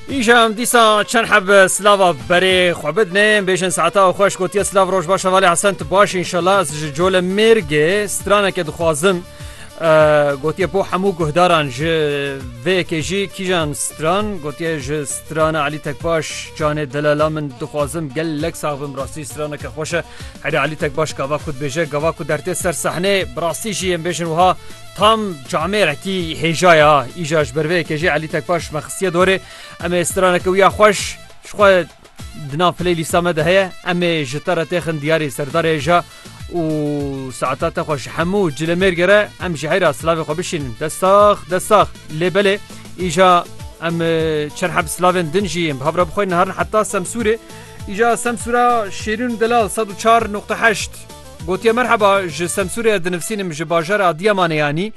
Îşam dîsa çend heb silava berê xwe bidinê bêjin saeta û xweş gotiye silav roj baş hevalê hesen tu baş inşallah ez ji cole mêrgê straneke dixwazim gotiye bo hemû guhdaran ji vêyekê jî kîjan stran gotiye ji strana Elî tekbaş canê delala min dixwazim gelek savim rastî straneke xweşe herê Elî tekbaş gava ku dibêje gava ku dertê ser sehnê bi rastî jî em bêjin wiha Tam camê retî hêjaya îja ji ber vê yekê jê Elî Tekbaş ji me xistiye dorê em ê straneke wî ya xweş ji xwe di nav playlîsta me de heye em ê ji te re têxin diyarê serdarê hêja û saeta te xwe ji hemû cilemêrge re em ji heyra silavê xwe bişînin destax destax lê belê îja em çerhe bi silavên din jî em bi hev re bixwînin herin heta semsûrê îja semsûra şêrîn delal 104.8 Gotiye merheba ji Semsûrê dinivsînim ji bajara Adiyamanê yanî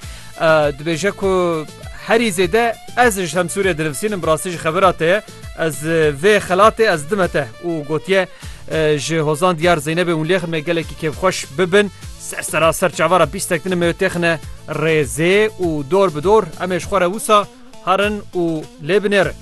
dibêje ku herî zêde ez ji Semsûrê dinivsînim bi rastî ji xebira te ye ez vê xelatê ez dime te û gotiye ji hozan diyar Zeynebê hûn lêxin me gelekî kêfxweş bibin ser sera ser çavara bîstek dine me têxine rêzê û dor bi dor em ê ji xwe re wisa Herin û lê binêrin.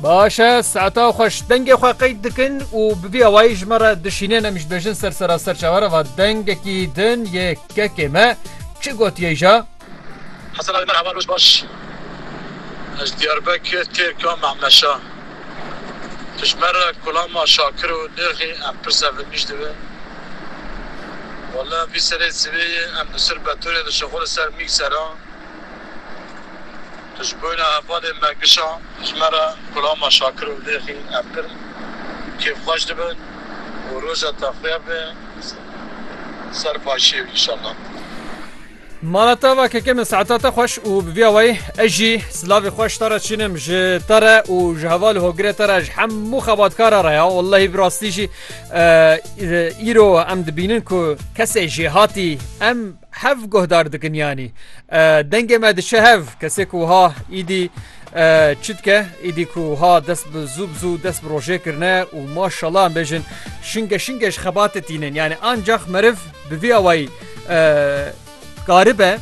Baş e, saeta xweş dengê xwe qeyd dikin û bi vî awayî ji me re dişînên em ji bêjin ser sera serçavera va dengekî din yê kekê me çi gotiyê ja? Hesen Ali Merhaba roj baş Ez ji Diyarbekir Têrka Mehmeşa Dijmera Kulama Şakir û nirxî em pirsa vin nîş dibe Walla vî serê sivê yê em bi sir betorê dişixo li ser mîg sera Tu ji boyna hevalê me gişa Dijmera Kulama Şakir û nirxî em pir kêfxweş dibin û roja te xuya be ser başiyê wî inşallah. Mala te va keke min saeta te xweş û bi vî awayî ez jî silavê xwe ji te re çînim ji te re û ji hevalê hogirê te re ji hemû xebatkara re ya wellehî bi rastî jî îro em dibînin ku kesê jêhatî em hev guhdar dikin yanî dengê me diçe hev kesê ku wiha îdî çi dike îdî ku wiha dest bi zû bi zû dest bi rojê kirine û maşallah em bêjin şinge şinge ji xebatê tînin yanî ancax meriv bi vî awayî karibe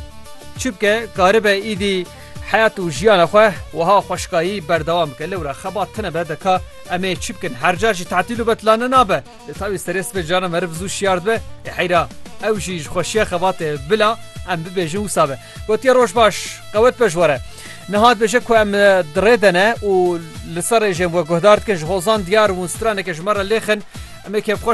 çibke karibe îdî heyat û jiyana xwe wiha xweşkayî berdewam bike lewra xeba tine be deka emê çi bikin herca jî tatil û betilane nabe li tawî serê sibê cana meriv zû şiyar dibe ê heyra ew jî ji xweşiya xebatê bila em bibêjin wisa be gotiye roj baş qewet be ji were nihat bêje ku em dirê de ne û li ser rêjên we guhdar dikin ji hozan diyar û straneke ji me re lêxin emê kevxweş